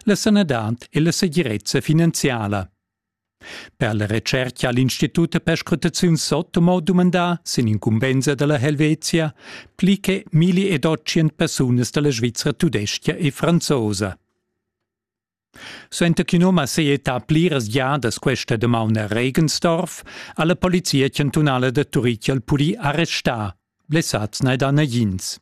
la sanadad e la segirezza finanziala. Per la retscherca ha l'Institut per scrutaziun Sotomo dumandà sin incumbensa da la Helvetia pli che 1800 persunas da la Svizra tudestga e franzosa. Suenter ch'in um ha seiettà pliras giadas questa damaun a Regensdorf, ha la polizia chantunala da Turitg al purì arrestà, blessads n'è da nagins.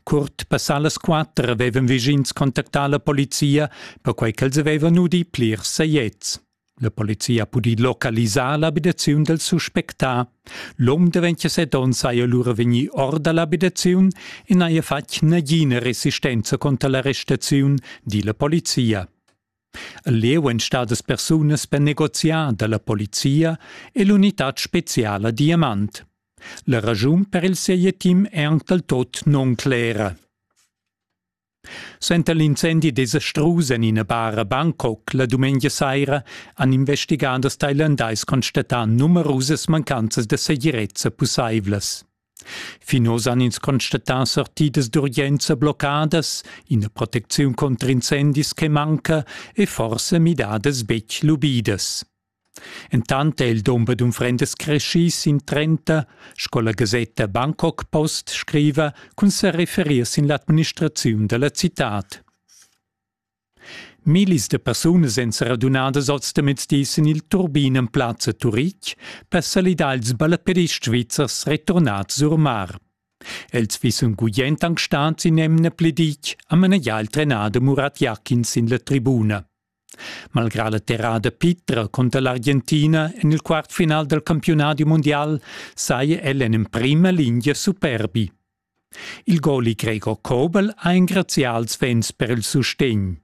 Curt passà las quatter avevan vischins contactà la polizia, perquai ch'els avevan udì plirs sajets. La polizia ha pudì localisar l'abitaziun dal suspectà. L'um da 27 onns saja lura vegnì or da l'abitaziun e n'haja fatg nagina resistenza cunter l'arrestaziun, di la polizia. Leu ein stadas persunas per negoziar dalla polizia e l'unitad speciala Diamant. La raschun per il seietim è anc dal tot nunclera. Senta l'incendi desastrus en ina bar a Bangkok la dumengia saira han investigaders thailandais constatà numerusas mancanzas da segirezza pussaivlas. Fin oz han ins constatà sortidas d'urgenza bloccadas, ina protecziun contr incendis che manca e forsa midadas betg lubidas. Entant è il dumber d'unfrendas creschì sin 30, sco la gasetta Bangkok Post scriva, cun sa referir sin l'administraziun da la citad. Millis da persunas èn sa radunadas oz demezdi sin il turbin en plazza Turitg per salidar ils ballapedists svizzers returnads sur mar. Els fissen gugent anc stads in emna pli ditg a manegiar il trenader Murat Jakin sin la tribuna. Malgrà la terrada pitra contra l'Argentina en il quart final dal campiunadi mundial saja el en emprima lingia superbi. Il goli Gregor Kobel ha engrazià als vents per il sustegn.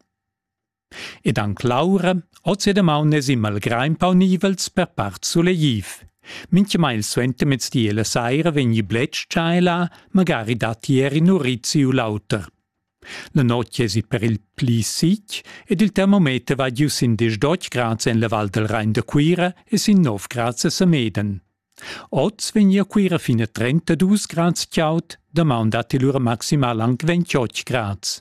Ed anc Laura, oz e damaun es imma il grain paunivels per part sulegliv. Mintgamai suentermezdi e la saira vegni bletsch tschai là, magari datti er in urizi u l'auter. La notg esit per il pli sic ed il termometer va giu sin 18 grads en la Val del Rein da Cuira e sin 9 grads a Sameden. Oz vegnia Cuira fin a 32 grads chaud, damaun datti lura maximal anc 28 grads.